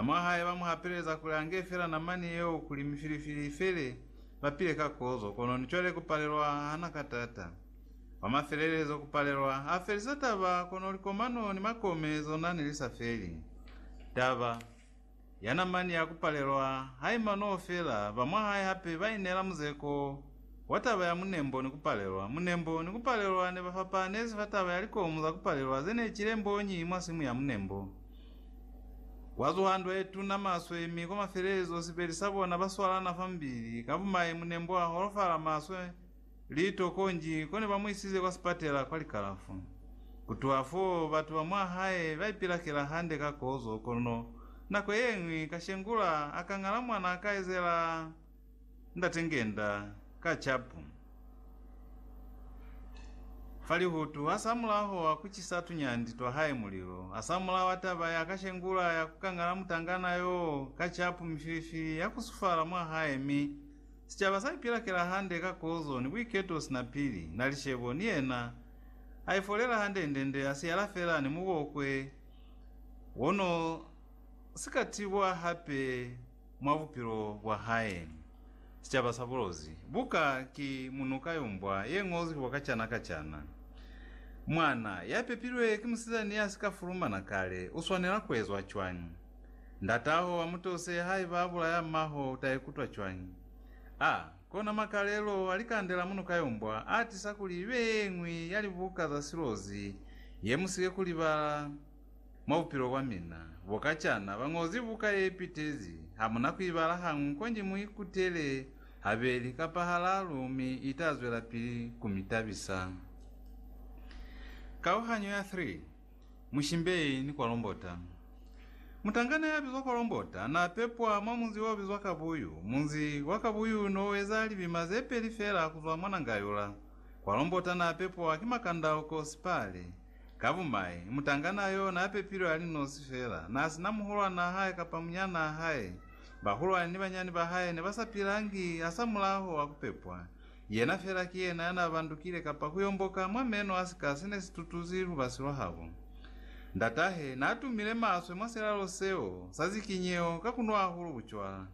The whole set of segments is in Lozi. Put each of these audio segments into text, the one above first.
Bamwahae ba mu hapeleza kuli a nge fela namani yeo kuli mifilifili i fele, ba pile ka kozo, kono ni cwale ku palelwa ha na ka taata. Kwa mafelelezo, ku palelwa ha felisa taba, kono likomano ni makome zona ne li sa feli. Taba ya namani ya ku palelwa ha i manoo fela, bamwahae hape ba ineela muzeko wa taba ya munembo ni ku palelwa. Munembo ni ku palelwa ne ba fapahanezi fa taba ya likomu za ku palelwa ze ne cile mbonyi mwa simu ya munembo. Kwa zuha ntwa ye tuna maswe, mi kwa mafelelezo sibeli sa bona ba swalana fa mubili. Ka bumai, Munembwa a holofala maswe, liito, konji ko ne ba mu isize kwa sipatela kwa likalafu. Ku tuha fo, batu ba mwa hae ba ipilakela hande ka kozo, kono nako ye ñwi, Kashengula a ka ñala mwana a ka ezela. Ndate ngenda ka capu fa lihutu, asamulaho wa kucisa tunyandi twa hae mulilo, asamulaho wa taba ya kashengula ya kukangala mutangana yoo ka capu mifilifili ya kusufala mwa hae, mi sicaba sa ipilakela hande ka kozo ni buiketo sina pili, na licebo, ni yena aifolela handendende, asiyala fela ni mubokwe wono sikatibwa hape. Mwa bupilo bwa hae, sicaba sa bulozi buka ki munuka yo mbwa ye ngozwi kwa kacana kacana. Mwana ya pepilwe ki musizani ya si ka fulumana kale u swanela ku ezwa cwañi? Ndat'aho a mu tose haiba a bulaya mmaho u ta ikutwa cwañi? A kona makalelo a likande la munuka yo mbwa a tisa kuli i be ye ñwi ya libuka za silozi ye mu si ke ku libala. Mwa bupilo bwa mina bo kacana, bañozi buka ye pitezi hamuna ku ibala ha ñwi konji mu ikutele habeli kapa halalu mi ita zwelapili ku mi tabisa. Kauhanyo ya 3, Mushimbei ni Kwalombota Mutangana ya bizwa Kwalombota na pepwa mwa munzi o bizwa Kabuyu. Munzi wa Kabuyu no weza libima ze peli fela kuzwa mwa Nangayula. Kwalombota na pepwa ki Makandauko, Sipale, Ka bumai, mutangana yo n'a pepilwe a li nosi fela, n'a si na muhulwan'a hae kapa munyan'a hae. Bahulwani ni banyani ba hae ne ba sa pilangi hasamulaho wa ku pepwa. Yena fela ki yena ya n'a bandukile kapa ku yomboka mwa meno a sika se ne si tutuzi lubasi lwa habo. Ndat'ahe n'a tumile maswe mwa silalo seo sa zikinyeho ka ku nwa hahulu bucwala.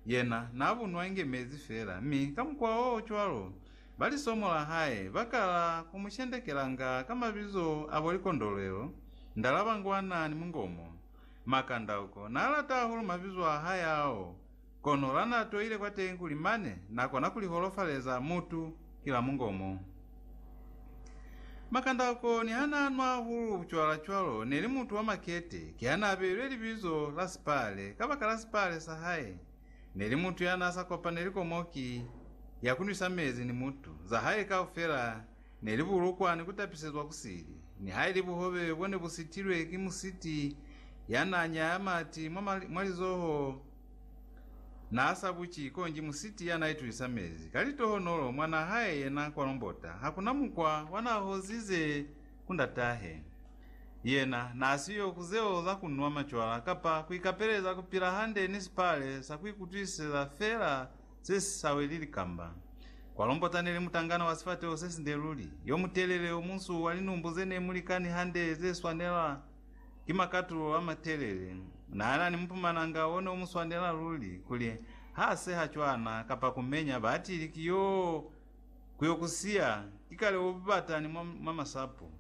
Yena n'a bu nwa inge mezi fela, mi ka mukwa o cwalo, Ba lisomo la hae ba kala ku mu shendekelanga ka mabizo a bo Likondolwelo, Ndalaba Ngwana ni Mungomo. Makandauko n'a lata hahulu mabizo a hae ao, kono la n'a toile kwateñi kuli mane n'a kona ku li holofaleza mutu ki la mungomo. Makandauko niha n'a nwa hahulu bucwala cwalo ne li mutu wa makete, kiha n'a beilwe libizo la Sipale kabakala sipale sa hae. Neli mutu yanasa kopaneli ko mo ki ya kunwisa mezi ni mutu. Za hae kaufela neli bulukwa ni kutapisezwa ku sili. Nihaili buhobe bone bu sitilwe ki musiti yana nyaya mati mwa lizoho, naasa buci konji musiti yana itulisa mezi ka litohonolo mwana hae yena kwa lombota. Hakuna mukwa wa na hozize ku ndatahe. Yena naasiyo ku zeo za ku nwa macwala kapa ku ikapeleza ku pila hande ni sipale sa ku ikutwisiseza feela se si sa weli likamba. Kwa Lombota neli mutangana wa sifateho se sinde luli, yo mutelele, o munsu, wa linumbu ze ne mu likani hande ze swanela ki makatulo a matelele. Naana ni mupumananga o ne u mu swanela luli, kuli ha seha cwana kapa ku menya batili ki yo Ku yo ku siya, ikale u bata ni mwa, mwa masapo.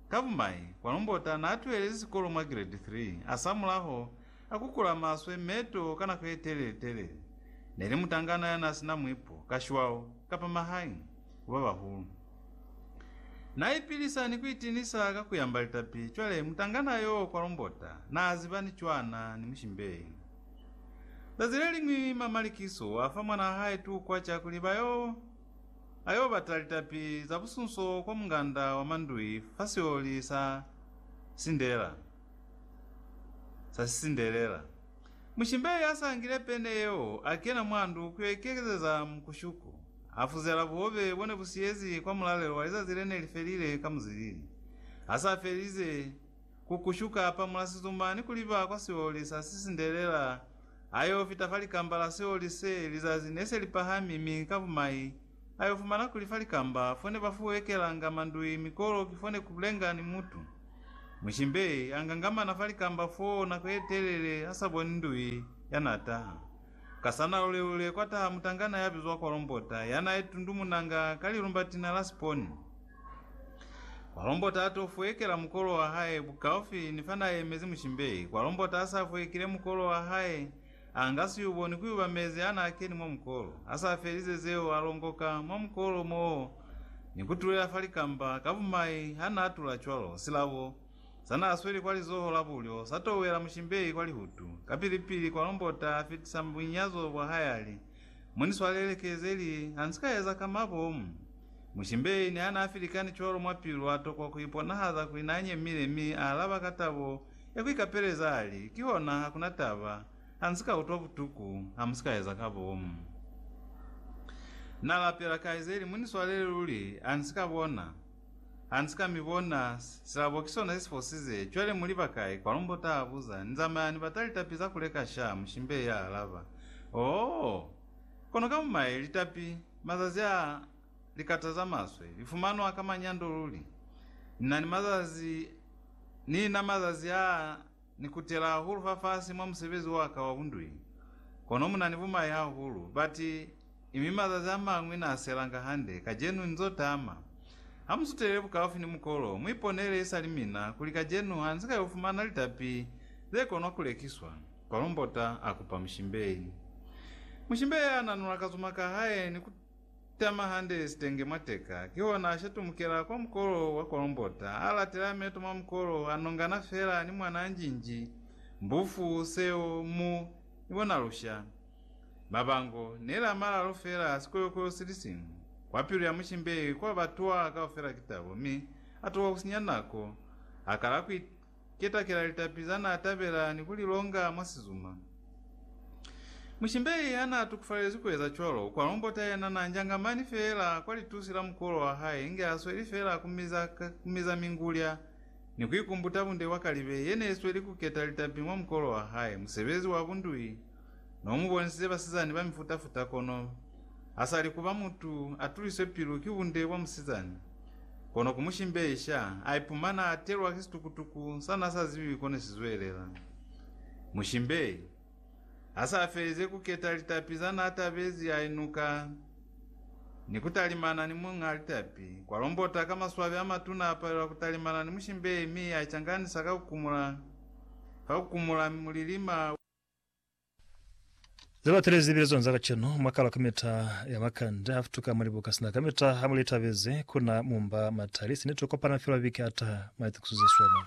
Ka bumai, kwa Lumbota n'a tuhelezi sikolo mwa Giredi 3, a samulaho a kukula maswe m'e to ka nako ye telele-telele. Ne li mutangana ya n'a si na mwipo, ka shwao, kapa mahae, ku ba bahulu. N'a ipilisa ni ku itinisa ka ku yamba litapi. Cwale, mutangana yo kwa Lumbota n'a ziba ni cwana ni mushimbei. Zazi leliñwi ma Malikiso a fa mwanaa hae tukwa ca kuli ba yo, a yo bata litapi za busunso kwa munganda wa mandui fa sioli sa sindela, sa sisindelela. Mushimbe ya sa ngile pene yeo a kena mwa ndu ku yo ikekezeza mukushuku, a fuzela buhobe bo ne bu siyezi kwa mulalelo wa lizazi le ne li felile ka muzilili, a sa felize ku kushu kapa mulasizuma ni kuliba kwa sioli sa sisindelela, ayo fita fa likamba la sioli se lizazi ne se li pahami mi ka bumai ayo fumana kuli fa likamba fone ba fuwekelanga mandui mi kolo ki fone ku lenga ni mutu. Mushimbe a ngangamana fa likamba foo nako ye telele a sa boni ndui ya na taha. Ka sa na lule-lule kwa taha mutangana ya bizwa Kolombota ya na itundumunanga ka lilumbatina la siponi. Kwa lombota ato fuekela mukolo wa hae bukaufi ni fana aemezi mushimbeyi, kwa lombota asa fuekile mukolo wa hae, anga siyubo ni kuyuba mezi ana akeni mwa mukolo, asa felize zeo alongoka mwa mukolo moo ni kutulela fa likamba, ka bumai hana atula cwalo, silabo sana asweli kwa lizoho la bulyo satowela mushimbeyi kwa lihutu, kapili pili kwa lombota afitisa bunyazo bwa hae ali, Mu ni swalele kezeli ha nsi ka eza ka mabomu. Mushimbei ne a n'a filikani cwalo mwa pilu a tokwa ku iponahaza kuli n'a nyemile mi a alaba ka tabo ya ku ikapeleza a li, Kihona, ha ku na taba, ha nsi ka utwa butuku, ha mu si ka eza ka bomu. Na lapela, Kaizeli, mu ni swalele luli, ha ni si ka bona. Ha nsi ka mi bona, silabo ki sona isifosize. Cwale muli ba kai? Kwa lumbo ta abuza. Ni zamaya ni bata litapi za kuleka sha, Mushimbei ya alaba. Oh! Kono ka mumaye, litapi, mazazi a, likata za maswe, li fumanwa ka manyando luli. Ni na ni mazazi, ni na mazazi a. Ni kutela hahulu fafasi mwa musebezi wa ka wa bundwi, kono mu na ni bumai hahulu, ba ti, mi mazazi a mañwi n'a selanga hande. Kacenu nz'o tama. Ha mu sutelele bukaufi ni mukolo, mu iponele isali mina kuli kacenu ha nzi ka y'o fumana litapi ze konwa ku lekiswa. Kolombota a kupa mushimbei. Mushimbei a nanula kazuma ka hae ni ku. Tama hande sitenge mwa teka, kihona a shatumukela kwa mukolo wa kolombota, a latela meto mwa mukolo, a nongana fela ni mwana anjinji, mbufu, seo, mu, ni bona lusha. Mabango, neli a malalu fela, sikoyokoyo sili siñwi. Kwa pilu ya mushimbehi, kwa ba twa kaufela ki tabo, mi a tuha kusinya nako, a kala ku Ketakela litapi za n'a tabela ni ku li longa mwa sizuma. Mushimbeli ha n'a tukufalelezwi ku eza cwalo, u kwa lombota yena n'a njanga mani feela kwa litusi la mukuolo wa hae inge h'a sweli feela ku miza, ku miza mingulya ni ku ikumbuta bunde bwa kalibe ye n'e sweli ku keta litapi mwa mukuolo wa hae, musebezi wa bundui. No mu bonisize basizani ba mifuta-futa kono ha sa li ku ba mutu a tuliswe pilu ki bunde bwa musizani. Kono ku mu shimbeisha, a ipumana a atelwa ki situkutuku sa n'a sa zibi ko ne si zwelela. Mushimbei ha s'a felize ku keta litapi za n'a tabezi a inuka ni ku talimana ni muñ'a litapi. Kwa lombota ka maswabi a matuna a palelwa ku talimana ni mushimbei mi a icanganisa ka ku kumula, ka ku kumula mi mulilima. Zilatelezi bilezwani za kacenu mwakalwa kamita ya makande afutuka mwa libuka sina kamita hamulitabezi kuna mumba matali sine tokopana filwa biki ataha maitukiso zeswema.